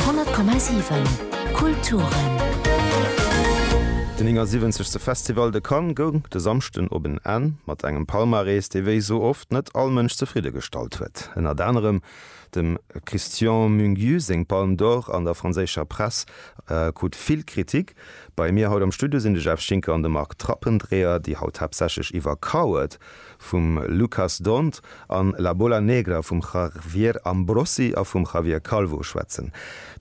100,7 Kulturen. Den 79. Festival de Cannes goung de Samschden op en Enn mat engem Palmarès, dee wéi esou oft net all Mënsch zefridde gestallt huet. Ënnert anerem dem Christian Mungiu seng Palme d'Or an der franséischer Press krut vill Kritik. Bei mir haut am Studio sinn de Jeff Schinker an de Marc Trappendreher, déi haut haaptsächlech iwwer Coward vum Lucas D'Hondt an La Bola Negra vum Javier Ambrosi a vum Javier Calvo schwätzen,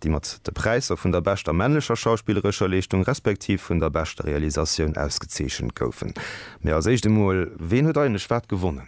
déi mat de Präisser vun der beschter männlecher schauspillerescher Leeschtung respektiv vun der beschter Realisatioun ausgezeechent goufen. Mee als éischt emol, ween huet eigentlech wat gewonnen?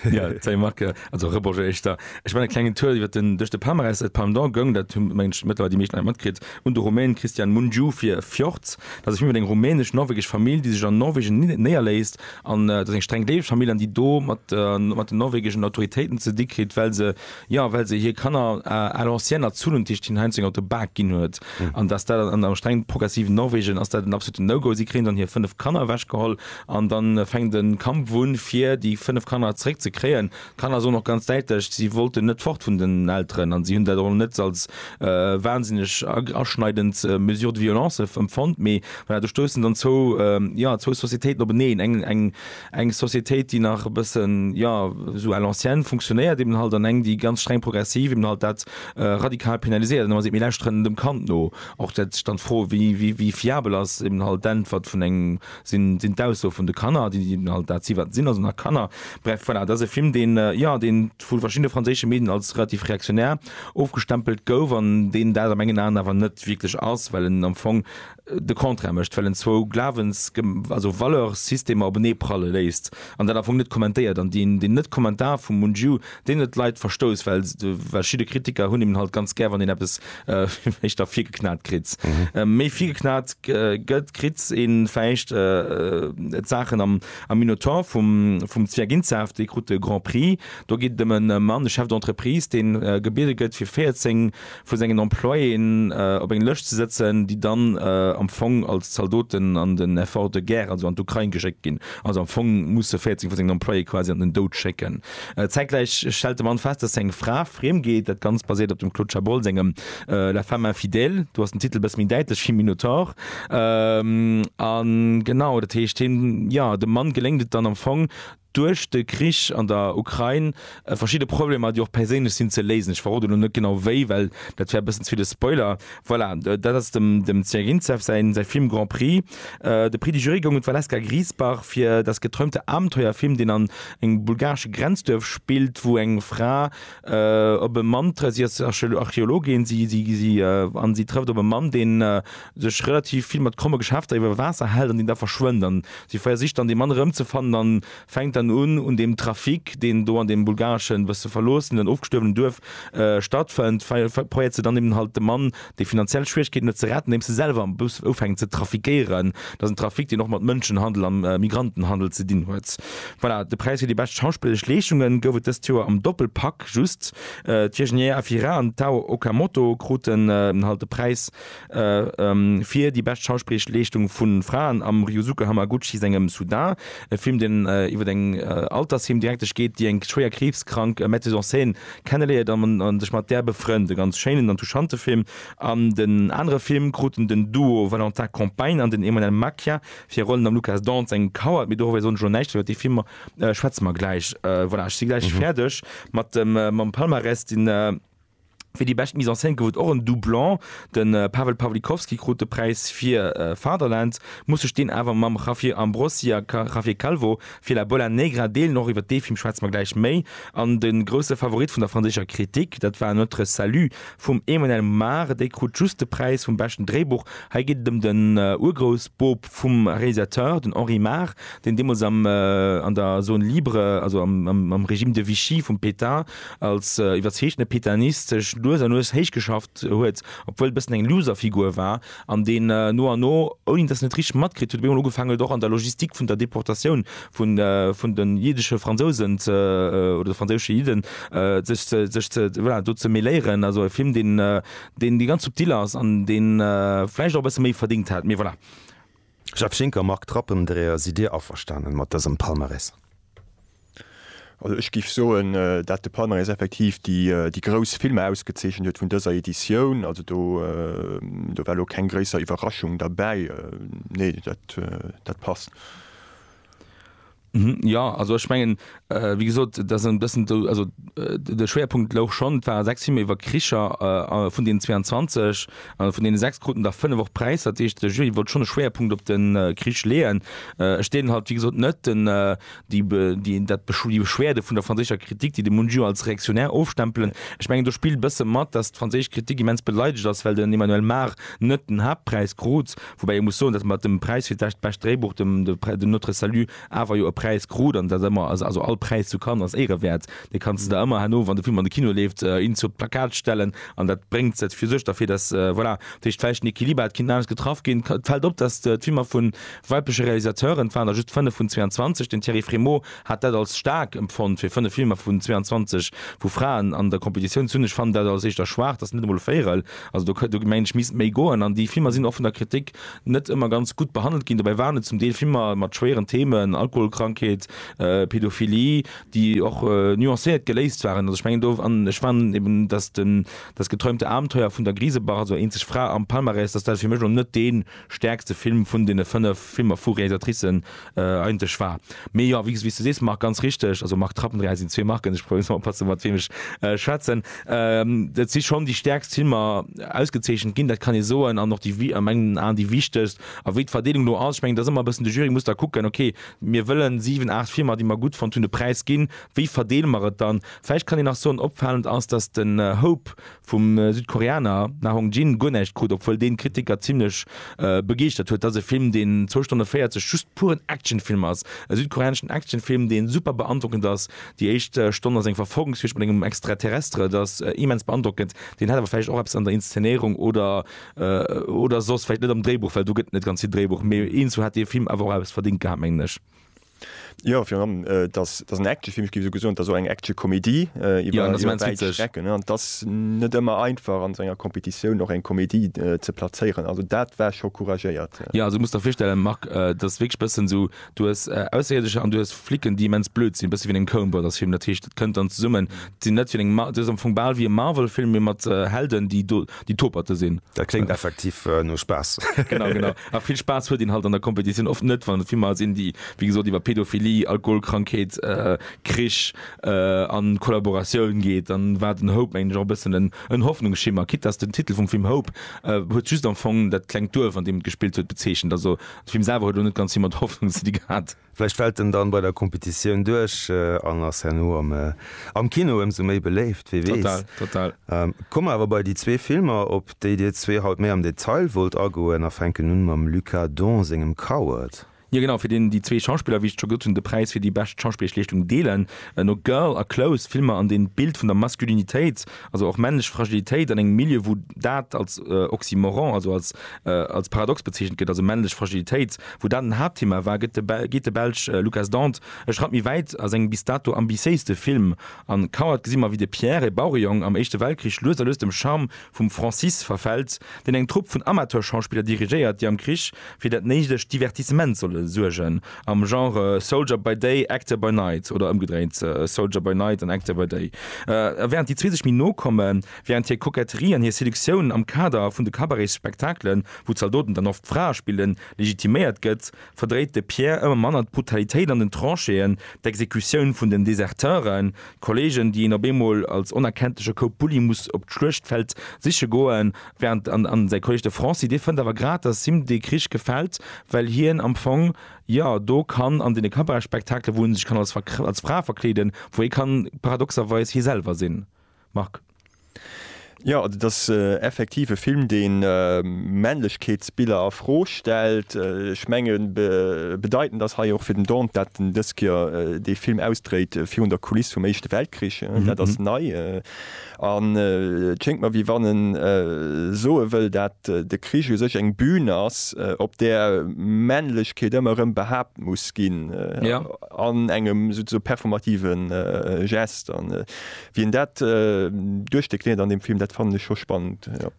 Jo, salut Marc, also Rebonjour éischter. Ech man e klengen Tour iwwert den, duerch de Palmarès, et Palme d'Or goung, dat hu mengen ech mëttlerweil déi meeschten Leit matkritt, un de Rumän Cristian Mungiu fir Fjords. Dat ass e Film iwwer eng rumänesch-norwegesch Famill, déi sech an Norwegen néierléisst An et ass eng streng dänesch Famill an déi do mat mat den norwegischen Autoritéiten ze di kritt, well se jo well se hir Kanner à l'ancienne erzunnen, dat heescht hinnen heiansdo eng Auto Bag ginn huet an dass dat an engem strengen progressiven Norwegen ass dat en absoluten No-Go. Si kréien dann hir 5 Kanner ewechgeholl an dann fänkt en Kampf un fir déi 5 Kanner zréck ze kréien. D'Kanner soen och ganz däitlech, si wollten net fort vun den Elteren an si hunn dat och net als wahnsinneg aschneidend Mesure de violence empfonnt. Mee voilà, do stoussen dann zwou, jo, zwou Societéiten openeen. Eng, eng, eng Societéit, déi nach e bëssen, jo, esou à l'ancienne funktionéiert eben halt, an eng, déi ganz streng progressiv eben halt dat radikal penaliséiert. An da muss ee eben lauschteren dem Kand no. Och dat, dann d'Fro, wéi, wéi, wéi fiabel ass eben halt d'Äntwert vun engem sinn d'Aussoe vun de Kanner, déi sinn halt dat si wat se sinn, also nach Kanner. Bref, voilà, dat ass e Film, deen, jo, deen vu verschiddene franséische Medien als relativ reaktionär ofgestempelt gouf an deen dat a mengen Aen awer net wierklech ass, well en am Fong de Contraire mécht, well en zwou Glawens-, also Valeurs-systemer openee pralle léisst an dat am Fong net kommentéiert. An deen Net-Kommentar vum Mungiu deen et lait verstouss, well verschidde Kritiker hunn eben halt ganz gär, wann een eppes vläicht da virgeknat kritt. Méi virgeknat gëtt, kritt een vläicht d'Saachen am Minotaur vum Zwerginzaaft, dee krut de Grand Prix. Do geet et ëm e Mann, e Chef d'entreprise, dee gebiede gëtt, fir 14. vu sengen Employéen op eng Lëscht ze sëtzen, déi dann am Fong als Zaldoten an den Effort de guerre, also an d'Ukrain geschéckt ginn, also am Fong musse 14 vu sengen Employéë quasi an den Doud schécken. Zäitgläich stellt de Mann fest, datt seng Fra friem geet. Dat Ganzt basiert op dem Claude Chabrol sengem La femme infidèle. Do ass den Titel e bësse méi däitlech wéi Minotaur. A genau, dat heescht hien, jo, dem Mann geléngt et dann am Fong, duerch de Krich an der Ukrain verschidde Problemer, déi och perséinlech sinn, ze léisen. Ech verroden elo net genau wéi, well dat wär e bëssen ze vill e Spoiler. Voilà, dat ass dem Zjagintsev säin Film Grand Prix. De Prix du Jury goung un d'Valeska Griesbach fir Das geträumte Abenteuer, Film, deen an engem bulgaresche Grenzduerf spillt, wou eng Fra op e Mann trëfft. Si ass Archeologin an si trëfft op e Mann, deen sech relativ vill mat kromme Geschäfter iwwer Waasser hält an deen da verschwënnt an si versicht dann dee Mann erëmzefannen an fänkt dann un un deem Trafic deen do an deem bulgareschen bësse verloossen an ofgestuerwenen Duerf stattfënnt, probéiert se dann eben halt de Mann dee finanziell Schwieregkeeten huet ze retten andeems se selwer am Bus ufänken ze trafiquéieren. Dat ass en Trafic deen och mat Mënschenhandel a Migrantenhandel ze dinn huet. Voilà, de Präis fir déi bescht schauspilleresch Leeschunge gouf et dëst Joer am Doppelpack just. D'Virginie Efira an d'Tao Okamoto kruten halt de Präis. fir déi bescht schauspilleresch Leeschtung vu Fraen am Ryusuke Hamaguchi sengem Sudan, e Film, deen iwwer eng Altersheem-Direktesch geet, déi eng schwéier kriibskrank Metteuse en scène kenneléiert a sech mat där befrënnt. E ganz schéinen an touchante Film. An den anere Film kruten den Duo Valentin Compagne an den Emmanuel Macia fir Rollen am Lukas Dance eng Coward, mee doriwwer soen ech elo näischt, iwwer dee Film schwätze mer gläich. Voilà, ech si gläich fäerdeg mam Palmarès. Fir déi bescht Mise en scène gouf et och en Doublon, de Pawel Pawlikowski krut de Präis fir Fatherland, muss sech deen awer mam Javier Ambrosi a Javier Calvo fir La Bola Negra deelen. Och iwwer dee Film schwätze mer gläich méi. An de grousse Favorit vun der franséischer Kritik, dat war Notre Salut vum Emmanuel Mar, dee krut just de Präis vum beschten Dréibuch. Hei geet et ëm den Urgroussboob vum Realisateur, den Henri Mar, deen deemools am an der Zone libre, also am Régime de Vichy vum Pétain, als iwwerzeegene Petanist sech lues a lues héichgeschafft huet, obwuel e bëssen eng Loserfigur war, an deen no an no, ouni dass en et richteg matkritt huet, op eemol ugefaangen huet och an der Logistik vun der Deportatioun vun de jiddesche Fransousen oder de franséische Jidden sech ze, voilà, do ze mêléieren. Also e Film, deen ganz subtil ass an dee vläicht och e bësse méi verdéngt hätt, mee voilà. Jeff Schinker, Marc Trappendreher, Sidd Dir averstanen mat dësem Palmarès? Also ech géif soen, dat de Palmarès effektiv déi grouss Filmer ausgezeechent huet vun dëser Editioun. Also do war elo keng gréisser Iwwerraschung derbäi. Nee, dat passt. Mhm, jo, also ech mengen, äh, wéi gesot, dat ass e bëssen do, also äh, de Schwerpunkt louch schonn, et ware sechs Filmer iwwer Kricher, äh, vun deenen 22, äh, vun deene sechs kruten der fënnef och Präisser, dat heescht de Jury wollt schonn e Schwerpunkt op den äh, Krich leeën. Äh, ech deelen halt, wéi gesot, net den, äh, déi, be, déi, dat, Besch- déi Beschwerde vun der franséischer Kritik, déi de Mungiu als reaktionär ofstempelen. Ech mengen, do spillt e bësse mat, datt d'franséisch Kritik immens beleidegt ass, well den Emmanuel Mar net den Haaptpräis krut, Woubäi ee muss soen, datt mer dem Präis fir d'Bescht bescht Dréibuch, dem de Notre Salut, awer jo e Präis krut an datt ëmmer, also all Präis zu Cannes ass éirewäert, dee kanns de der ëmmer herno, wann de Film an de Kino leeft, in zur Plakat stellen an dat bréngt et fir sech, derfir datt, voilà, dat heescht vläicht den Equiliber hätt kinnen anescht getraff ginn. Et fält op, datt d'Filmer vu weibleche Realisateuren, et waren der just 5 vun 22, den Thierry Frémaux hat dat als staark empfonnt, fir 5 Filmer vun 22 vu Fraen an der Competitioun ze hunn, ech fannen dat als éischter schwaach, datt net emol e Véierel. Also do, do mengen ech, misst méi goen. An déi Filmer sinn och vun der Kritik net ëmmer ganz gutt behandelt ginn. Dobäi waren et zum Deel Filmer mat schwéieren Themen, Alkoholkrankheet, Pädophilie, déi och nuancéiert geléist waren. Also ech mengen do, an ech fanden eben, dass den Das geträumte Abenteuer vun der Griesebach, also Eenzeg Fra am Palmarès, dass dat fir mech elo net dee. stäerkste Film vun deene 5 Filmer vu Réalisatricen eigentlech war. Mee jo, wéi s du sees Marc, ganz richteg, also Marc Trapp an Réal sinn zwee Marken, ech probéiere just mol oppassen, mat weem ech schwätzen. Et si schonn déi stäerkst Filmer ausgezeechent ginn, dat kann ee soen, an och déi, a mengen Aen, déi wichtegst. A wéi d'Verdeelung elo ass, ech mengen, et ass ëmmer e bëssen, de Jury muss da kucken, okay, mir wëllen 7, 8 Filmer, déi mer gutt fonnt hunn, de Präis ginn, wéi verdeele mer et dann? Vläicht kann een nach soen, opfalend ass, datt den Hope vum Südkoreaner Na Hong Jin guer näischt krut, obwuel deen d'Kritiker zimmlech begeeschtert huet. Dat ass e Film deen zwou Stonne 40 just puren Actionfilm ass. E südkoreaneschen Actionfilm deen super beandrockend ass. Déi éischt Stonn ass eng Verfolgungsjuegd mat engem Extraterrestre, et ass immens beandrockend. Deen hätt awer vläicht och eppes an der Inszenéierung oder oder soss vläicht net am Dréibuch, well do gëtt net ganz vill Dréibuch, mee eenzu hätt dee Film awer och eppes verdingt gehat mengen ech. Jo, virun allem, et ass, et ass en Actionfilm, ech géif esou gesoen, et ass och eng Action-Comédie iwwer iwwer wäit Strecken, an et ass net ëmmer einfach an esou enger Competitioun och eng Comédie ze plazéieren. Also dat war scho couragéiert. Jo, also du muss der virstellen, Marc, et ass wierklech e bëssen esou, du hues Ausserierdecher an du hues Flicken, déi immens blöd sinn, e bësse wéi an engem Coen Brothers Film. Dat heescht, et kënnt dann zesummen, et sinn net wéi an engem, et ass am Fong bal wéi e Marvel-Film, mee mat Helden, déi do déi Toperte sinn. Dat kléngt effektiv no Spaass. Genau, genau. A vill Spaass huet een halt an der Competitioun oft net, wann et Filmer sinn, déi, wéi gesot, iwwer Pädophilie, Alkoholkrankheet, Krich an Kollaboratioun geet. Dann war den Hope, mengen ech, och e bëssen en Hoffnungsschimmer, quitte dass den Titel vum Film Hope huet just am Fong dat klengt Duerf, an deem et gespillt huet, bezeechent. Also de Film selwer huet elo net ganz vill mat Hoffnung ze di gehat. Vläicht fält en dann bei der Competitioun duerch an ass herno am Kino ëmsou méi beléift, wee weess. Komme mer awer bei déi zwee Filmer, op déi dir zwee haut méi am Detail wollt agoen a fänken un mam Luc Adon sengem Coward. Jo genau, fir deen déi zwee Schauspiller, wéi ech scho gesot hunn, de Präis fir déi bescht schauspilleresch Leeschtung deelen. No Girl a Close, Filmer an deenen d'Bild vun der Maskulinitéit Also och männlech Fragilitéit an engem Milieu, wou dat als Oxymoron, also als als Paradox bezeechent gëtt, also männlech Fragilitéit, wou dat en Haaptthema war, gëtt de geet de Belsch Lucas Dant e Schratt méi wäit a sengem bis dato ambitiéiste Film. An Coward gesi mer, wéi de Pierre, e Bauerejong am Éischte Weltkrich, lues a lues dem Charme vum Francis verfält, deen eng Trupp vun Amateurschauspiller dirigéiert, déi am Krich fir dat néidegt Divertissement solle suergen. Am Genre Soldier by Day, Actor by Night, oder ëmgedréint, Soldier by Night an Actor by Day. A wärend déi zwee sech méi no kommen, wärend hir Koketterie an hir Seduktioun am Kader vun de Cabaretsspektakelen, wou d'Zaldoten dann oft d'Frae spillen, legitiméiert gëtt, verdréit de Pierre ëmmer manner d'Brutalitéit an den Tranchéen, d'Exekutioun vun den Deserteuren, Kollegen, déi een op eemol als onerkenntleche Koup Bulli muss op d'Schluechtfeld siche goen. Während an säi Kolleg de Francy, dee fënnt awer grad, datt him dee Krich gefält, well hien am Fong jo do kann an deene Cabaretspektakele, wou en sech kann als Fra verkleeden, wou ee kann paradoxerweis hie selwer sinn. Marc. Jo, et ass effektiv e Film, dee Männlechkeetsbiller a Fro stellt. Ech mengen, bedeitend ass hei och fir den Dante, dat en dës Kéier dee Film ausdréit virun der Kuliss vum Éischte Weltkrich. Dat ass nei. An et schéngt mer, wéi wann en soe wëll, dat de Krich u sech eng Bühn ass, op där Männlechkeet ëmmer erëm behaapt muss ginn, an engem souze performative Geste. Wien dat duerchdekliniert an dem Film, dat fannen ech scho spannend, jo.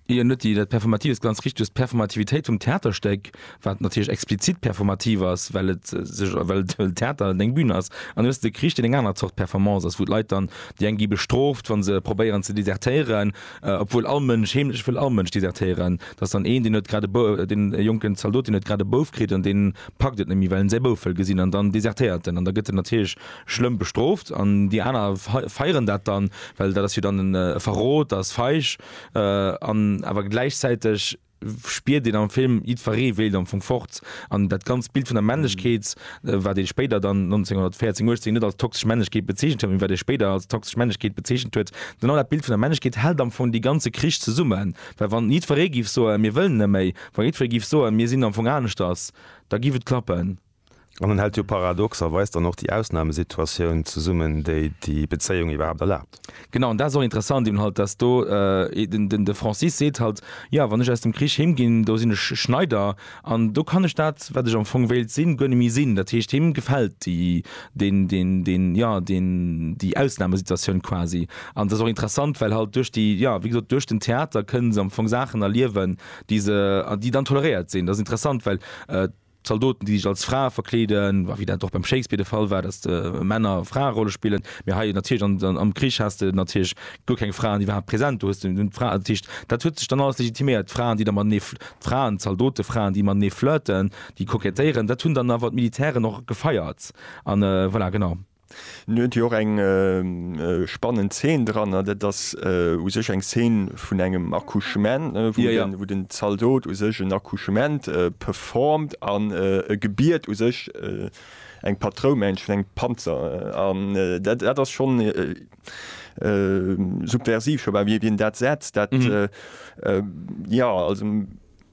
Hien huet déi, dat Performatives, ganz richteg, d'Performativitéit vum Theaterstéck, wat natierlech explizit performativ ass, well et sech, well et e Theater an eng Bün ass, an du hues de Krich, deen eng aner Zort Performance ass, wou d'Leit dann, déi eng gi bestrooft, wa se probéieren ze desertéieren, obwuel all Mënsch, heemlech wëll all Mënsch desertéieren, dass dann een, deen huet grad e, deen e jonken Zaldot, deen huet grad e Bouf kritt an deen packt et net méi, well en säi Bouf wëll gesinn an dann desertéiert en an da gëtt en natierlech schlëmm bestrooft an déi aner feieren dat dann, well dat ass jo dann e Verrot, dat ass feig an awer gläichzäiteg spiert een am Film, jiddweree wéilt am Fong fort an dat ganzt Bild vun der Männlechkeet, wat ee spéider dann 1914, 18 net als toxesch Männlechkeet bezeechent huet, mee wat ee spéider als toxesch Männlechkeet bezeechent huet, genau dat Bild vun der Männlechkeet hält am Fong dee ganze Krich zesummen, well wann jiddweree géif soen, mir wëllen net méi, wa jiddweree géif soen, mir sinn am Fong aneschters, da géif et klappen. An en hält jo paradoxerweis dann och déi Ausnahmesituatioun zesummen, déi déi Bezéiung iwwerhaapt erlaabt. Genau, an dat ass och interessant eben halt, dass do den de Francis seet halt, jo, wann ech aus dem Krich heem ginn, do sinn ech Schneider an do kann ech dat, wat ech am Fong wéilt sinn, guer net méi sinn. Dat heescht, him gefält déi deen deen deen jo deen déi Ausnahmesituatioun quasi. An et ass och interessant, well halt duerch déi jo wéi gesot duerch den Theater kënnen se am Fong Saachen erliewen, déi se déi dann toleréiert sinn. Dat ass interessant, well Zaldoten, déi sech als Frae verkleeden, wéi dat och beim Shakespeare de Fall war, datt Männer Fraerolle spillen. Mee hei natierlech am Krich has de natierlech guer keng Fraen iwwerhaapt präsent. Do hues de nëmmen d'Fraen. Dat heescht, dat huet sech dann alles legitiméiert. D'Fraen, déi da matenee, d'Fraen, d'Zaldote-Fraen, déi matenee flirten, déi kokettéieren, dat hunn dann awer d'Militären och gefeiert an voilà, genau. En huet jo och eng spannend Zeen dran, dat ass u sech eng Zeen vun engem Accouchement, wou den Zaldot u sech en Accouchement performt an e gebiet u sech eng Patroumensch vun engem Panzer an. Dat ass schonn subversiv, scho bal wéi en dat setzt. Jo, also.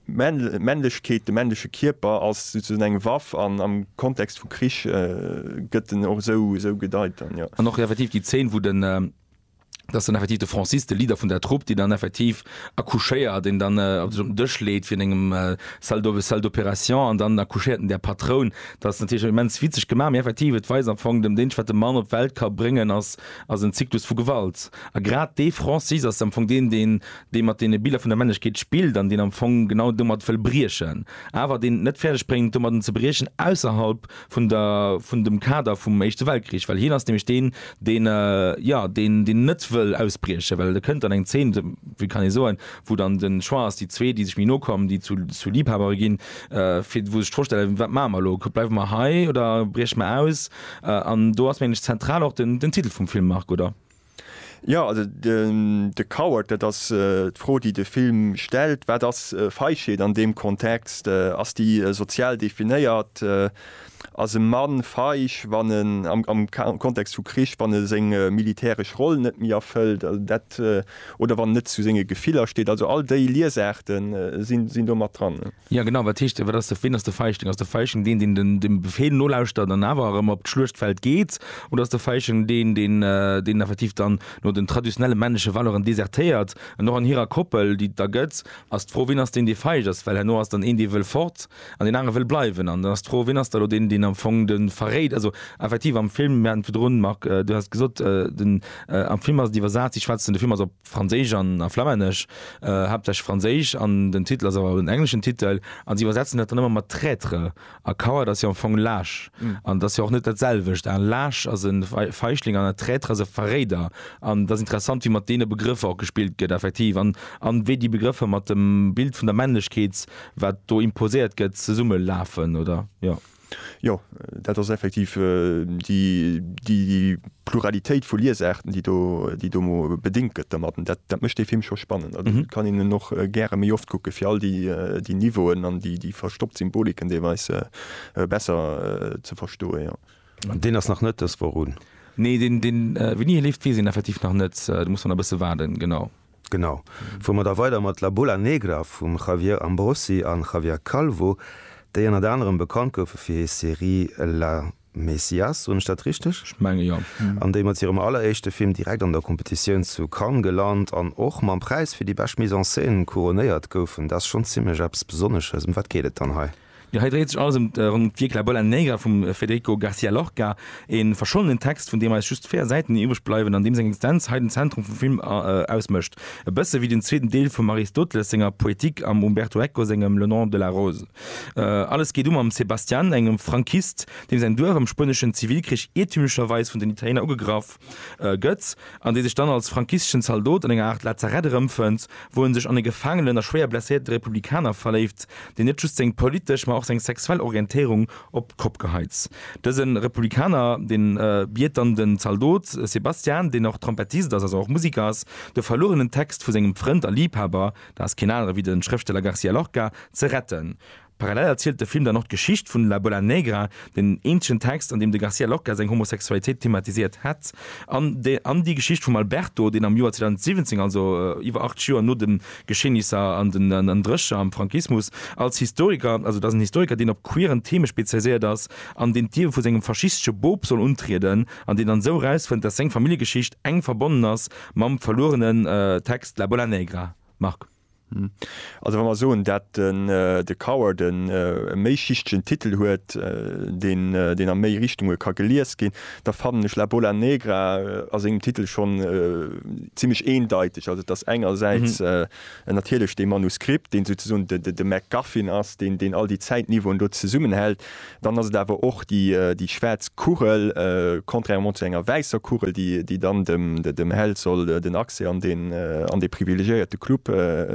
Männlechkeet, de männleche Kierper ass souzesoen eng Waff an am Kontext vu Krich gëtt en och esou gedeit dann, jo. An och effektiv déi Zeen, wou den, et ass dann effektiv de Francis, de Leader vun der Trupp, deen dann effektiv accouchéiert, deen dann sech op den Dësch leet vun engem Salle d'opération an dann accouchéiert en där Patroun. Dat ass natierlech immens witzeg gemaach, mee effektiv, et weist am Fong, deem Deeg wat de Mann op d'Welt ka bréngen ass en Zyklus vu Gewalt. A grad dee Francis ass am Fong deen, deen dee mat deene Biller vun der Männlechkeet spillt an deen am Fong genau domat wëll briechen, awer deen et net fäerdeg bréngt domatten ze briechen ausserhalb vun der vun dem Kader vum Éischte Weltkrich, well hien ass nämlech deen, deen jo deen deen net wëll ausbriechen, well e kënnt an eng Zeen, wéi kann ee soen, wou dann de Choix ass, déi zwee déi sech méi no kommen, déi zu zu Liebhabere ginn, fir wou se sech d'Fro stellen, wat maache mer elo, bleiwe mer hei oder brieche mer aus? An do ass mengen ech zentral och den den Titel vum Film, Marc, oder? Jo, also de Coward, dat ass d'Fro, déi de Film stellt. Wat ass Feigheet an deem Kontext? Ass déi sozial definéiert? Ass e Mann feig, wann en, am Kontext vu Krich, wann e seng militäresch Roll net méi erfëllt, oder wann en net zu senge Gefiller steet? Also all déi Liesaarte sinn do mat dran. Jo genau, wat heescht, wat ass de, ween ass de Feigling? Ass de Feigling deen, deen den, dem Befehl nolauschtert an awer erëm op d'Schluechtfeld geet? Oder ass de Feigling deen, deen, deen effektiv dann no den traditionelle männleche Valeuren desertéiert? An och an hirer Koppel, déi et da gëtt, ass d'Fro, ween ass deen, dee feig ass? Well herno ass dann een, dee wëll fort an deen anere wëll bleiwen. An dann ass d'Fro, ween ass da elo deen, deen am Fong de verréit? Also effektiv am Film, mir haten et virdrun, Marc, du haas et gesot, den, am Film ass et iwwersat, si schwätzen, de Film ass op. Franséisch an a Flammännesch, haaptsächlech Franséisch, an den Titel ass awer en engleschen Titel, an si iwwersetzen dat dann ëmmer mat Traitre, a Coward ass jo am Fong laasch, an et ass jo och net dat selwecht, en laasch ass e Feichling an e Traitre ass e Verréider, an et ass interessant wéi mat deene Begrëffer och gespillt gëtt effektiv, an an wéi déi Begrëffer mat dem Bild vun der Männlechkeet wat do imposéiert gëtt zesummelafen, oder? Jo, dat ass effektiv déi Pluralitéit vu Liesaarten, déi do bedéngt gëtt domat. Dat mécht dee Film scho spannend. Also ech kann en och gäre méi oft kucken, fir all déi Niveauen an déi verstoppt Symboliken deelweis besser ze verstoen, jo. An deen ass nach net dës Woch un? Nee, wéini e leeft, weess een effektiv nach net. Do muss mer nach e bësse waarden, genau. Genau. Fuer mer da weider mat La Bola Negra vum Javier Ambrosi an Javier Calvo, déi ënnert anerem bekannt goufe fir hir Serie La Mesías, soen ech dat richteg? Ech menge jo. An déi mat hirem alleréischte Film direkt an der Competitioun zu Cannes gelant an och mam Präis fir déi bescht Mise en scène couronnéiert goufen. Dat ass schonn zimlech eppes Besonnesches. Ëm wat geet et dann hei? Jo, hei dréit sech alles ëm d'Vie que la bola negra vum Federico Garcia Lorca, e verschollenen Text, vun deem eis just véier Säiten iwwreg bleiwen an deem seng Existenz hei den Zentrum vum Film ausmécht, e bësse wéi den zweeten Deel vum Aristoteles senger Poétique am Umberto Eco sengem Le nom de la rose. Alles geet u mam Sebastian, engem Frankist, deem säin Duerf am spueneschen Zivilkrich iertümlecherweis vun den Italiener ugegraff, Gëtt, an dee sech dann als frankisteschen Zaldot an enger Aart Lazarett erëmfënnt, wou en sech an e gefaangenen a schwéier blesséierte Republikaner verléift, deen net just seng politesch, mä och seng sexuell Orientéierung op d'Kopp geheit. Dëse Republikaner, dee biet dann de Zaldot Sebastian, deen och Trompettist ass, also och Musiker ass, de verluerenen Text vu sengem Frënd a Liibhaber, dat ass keen anere wéi de Schrëfsteller Garcia Lorca, ze retten. Parallel erzielt de Film dann och d'Geschicht vun La Bola Negra, den eenzegen Text, an deem de Garcia Lorca seng Homosexualitéit thematisiert hätt, an déi Geschicht vum Alberto, deen am Joer 2017, also iwwer 8 Joer no de Geschehnisser an den Erdrécher am Frankismus, als Historiker, also et ass en Historiker, deen op queeren Theme spezialiséiert ass an deen d'Liewe vu sengem faschistesche Bop soll untrieden an deen dann esou erausfënnt, datt seng Familljegeschicht enk verbonnen ass mam verluerenen Text La Bola Negra. Marc. Also wa mer soen, dat de Cower de méischichtegen Titel huet, deen a méi Richtunge ka gelies ginn, da fannen ech La Bola Negra a sengem Titel schonn zimlech eendeiteg. Also et ass engersäits natierlech dee Manuskript, deen souzesoen de MacGuffin ass, deen all déi Zäitniveauen do zesummenhält, Dann ass et awer och déi schwaarz Kugel, contrairement zu enger wäisser Kugel, déi dann dem Held soll den Accès an dee privilegiéierte Club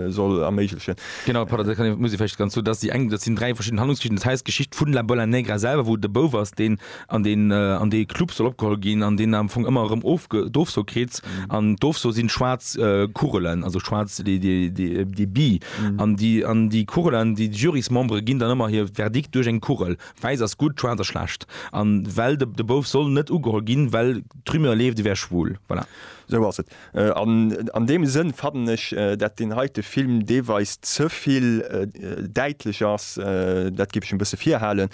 soll erméiglechen. Genau, pardon, dat kann, muss ee vläicht ganz, dass déi eng, dat sinn dräi verschidden Handlungsgeschichten. Dat heisst, d'Geschicht vun La Bola Negra selwer, wou de Bouf ass, deen an deen an dee Club soll opgeholl ginn an deen am Fong ëmmer erëm of, d'Ofso kritt. An d'Ofso sinn schwaarz Kugelen, also schwaarz déi bi. An déi Kugelen, déi Jurysmembere ginn dann ëmmer hir Verdikt duerch eng Kugel, wäiss ass gutt, schwaarz ass schlecht, a well de Bouf soll net ugeholl ginn, well d'Rumeur leeft, e wär schwul. Voilà. Esou ass et. An deem Sënn fannen ech, dat deen heite Film deelweis ze vill däitlech ass, dat géif ech e bësse virhalen,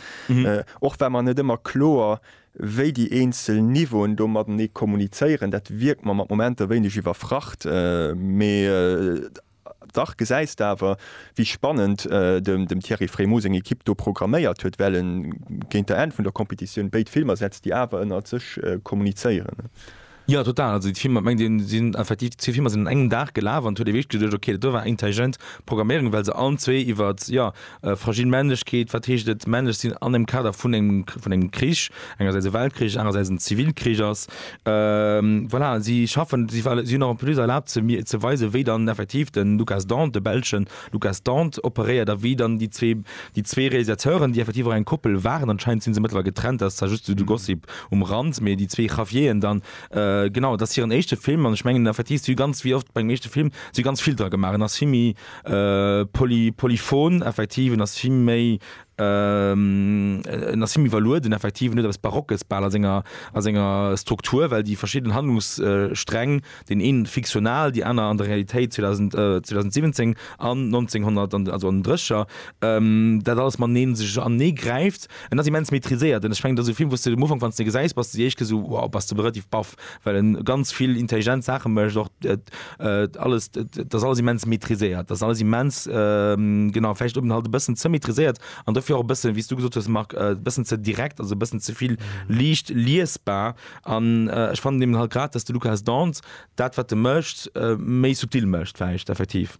och war mer net ëmmer kloer, wéi déi eenzel Niveauen do matenee kommunizéieren. Dat wierkt mer mat Momenter wéineg iwwerfracht, mee. Dach gesäis de awer, wéi spannend dem Thierry Frémaux seng Ekipp do programméiert huet, well e géint der Enn vun der Competitioun béid Filmer setzt, déi awer ënnert sech kommunizéieren. Jo, total. Also déi Filmer, mengt een, sinn effektiv, zwee Filmer sinn un engem Dag gelaf an et huet ee wierklech geduecht, ok, dat do war intelligent Programméierung, well se allen zwee iwwert, jo, Fragil Männlechkeet, Wat heescht et, männlech sinn an dem Kader vun engem Krich, engersäits e Weltkrich, anerersäits en Zivilkrich ass? Voilà, si schaffen, si hunn en plus erlaabt ze weisen, wéi dann effektiv de Lukas Dont, de Belschen Lukas Dont operéiert a wéi dann déi zwee, déi zwee Realisateuren, déi effektiv och eng Koppel waren, anscheinend sinn se mëttlerweil getrennt, dat ass zwar just esou de Gossip um Rand, mee déi zwee Javieren dann, genau, et ass hiren éischte Film an ech mengen effektiv, si hu ganz, wéi oft bei engem éischte Film, si hu ganz vill dra gemaach, en ass vill méi. Poly, polyphon, effektiv, en ass vill méi, en ass vill méi iwwerlueden, effektiv, en huet eppes Barockes bal a senger, a senger Struktur, well déi verschidden Handlungssträng, deen ee fiktional, déi aner an der Realitéit, 2000, 2017 an 1900, an, also an den Drécheger, dat alles matenee sech anenee gräift. En ass immens maîtriséiert an ech mengen, et ass e Film, wou s de um Ufank, wann s de e gesäis, bass de déi éischt kéier esou, wow, bass de relativ baff, well en ganz vill intelligent Saachen mécht, och alles, dass alles immens maîtriséiert, dass alles immens genau vläicht eben halt e bëssen ze maîtriséiert an dofir och e bëssen, wéi s du gesot hues Marc, e bëssen ze direkt, also e bëssen ze vill liicht liesbar an ech fannen eben halt grad, dass de Lukas Dance dat wat e mécht méi subtil mécht vläicht effektiv.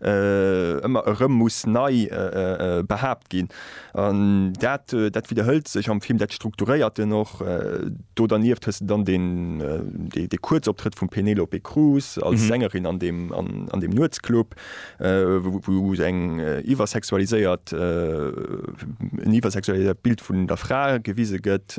ëmmer erëm muss nei behaapt ginn an dat dat widderhëlt sech am Film, dat strukturéiert en och. Do dernieft hues de dann den dee Kuerzoptrëtt vum Penelope Cruz als Sängerin an deem an deem Nuetsclub, wou se eng iwwersexualiséiert en iwwersexualiséiert Bild vun der Fra gewise gëtt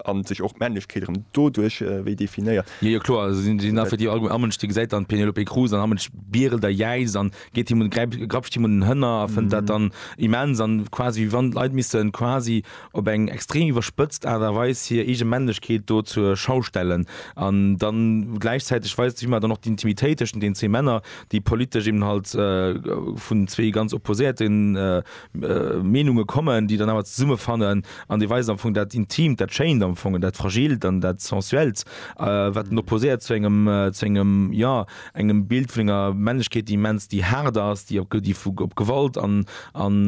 an sech och d'Männlechkeet erëm doduerch wéi definéiert. Jo jo kloer, also sinn sinn da fir déi Argum Ammensch déi gesäit dann d'Penelope Cruz an Ammensch bierelt a jäizt an geet him un gräip grapscht him un den Hënner a fënnt dat dann immens an quasi wéi wann d'Leit missten quasi op eng extrem iwwerspëtzt Aart a Weis hir eege Männlechkeet do zur Schau stellen an dann gläichzäiteg weist sech ëmmer dann och d'Intimitéit tëschent den zwee Männer déi politesch eben halt vun zwee ganz opposéierte Meenunge kommen, déi dann awer zesummefannen an déi weisen am Fong dat Intimt, dat Schéint am Fong, dat Fragilt an dat Sensuellt, wat en opposéiert zu engem, zu engem, jo, engem Bild vun enger Männlechkeet, déi immens, déi haart ass, déi op, déi vu, op Gewalt an, an,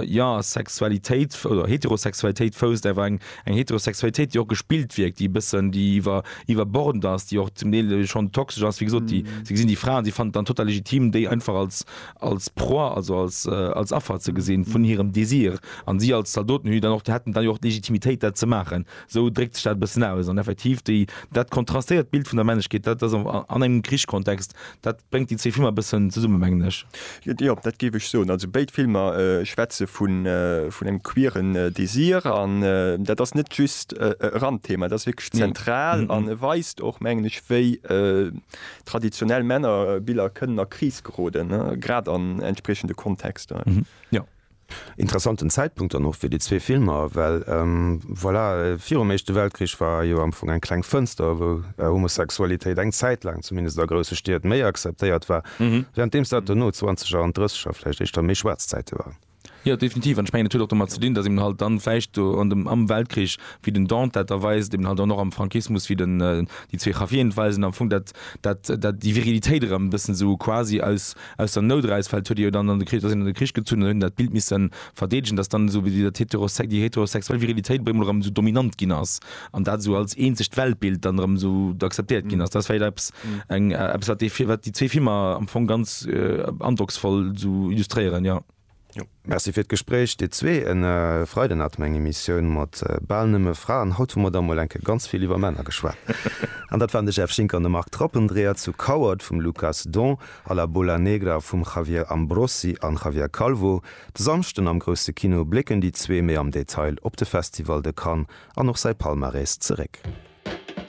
jo, Sexualitéit oder Heterosexualitéit fousst, awer eng, eng Heterosexualitéit, déi och gespillt wierkt, déi e bëssen, déi iwwer, iwwerbordend ass, déi och zum Deel schonn toxesch ass, wéi gesot, déi, si gesinn déi Fra an si fannen et dann total legitim, déi einfach als, als Proie, also als, als Affer ze gesinn vun hirem Désir, an si als Zaldoten hu jo dann och, hätten dann jo och d'Legitimitéit dat ze maachen, esou dréckt sech dat e bëssen aus. An effektiv déi, dat kontrastéiert d'Bild vun der Männlechkeet, dat ass an engem Krichskontext, dat bréngt déi zwee Filmer e bëssen zesumme mengen ech. Jo, dat géif ech soen. Also béid Filmer schwätze vun, vun engem queeren Désir, an dat ass net just e Randthema, dat ass wierklech zentral, an e weist och mengen ech wéi Traditionell Männerbiller kënnen a Kris geroden, grad an entspriechende Kontexter. Interessanten Zäitpunkt dann och fir déi zwee Filmer, well voilà, virum Éischte Weltkrich war jo am Fong eng kleng Fënster, wou Homosexualitéit eng Zäit laang, zumindest a grousse Stied, méi akzeptéiert war, währenddeems dat dono, zwanzeger an drësseger vläicht, éischter méi schwaarz Zäite waren. Jo, definitiv. An ech mengen, et huet och domat ze dinn, datt eben halt dann vläicht do an dem, am Weltkrich, wéi den Dante dat da weist, eben halt dann och am Frankismus, wéi den, déi zwee Javieren et weisen, am Fong dat, dat, dat, déi Virilitéit erëm e bëssen esou quasi aus, aus der Nout eraus, well et huet ee jo dann an de Krich, da sinn an de Krich gezunn an huet een dat Bild misse verdeedegen, datt dann esou wéi dat heterosex, déi heterosexuell Virilitéit op eemol erëm esou dominant ginn ass. an dat esou als eenzegt Weltbild dann erëm esou akzeptéiert ginn ass, dat ass vläicht eppes, eng, eppes wat déi, wat déi zwee Filmer am Fong ganz androcksvoll esou illustréieren, jo. Jo, merci fir d'Gespréich dir zwee. E Freiden hat mer eng Emissioun mat bal nëmme Fraen. Haut hu mer da mol eng Kéier ganz vill iwwer Männer geschwat. An dat waren de Jeff Schinck an de Marc Trappendreher zu Coward vum Lucas Don a La Bola Negra vum Javier Ambrosi an Javier Calvo. De Samschden am Grousse Kino blécken déi zwee méi am Detail op de Festival de Cannes an och säi Palmarès zeréck.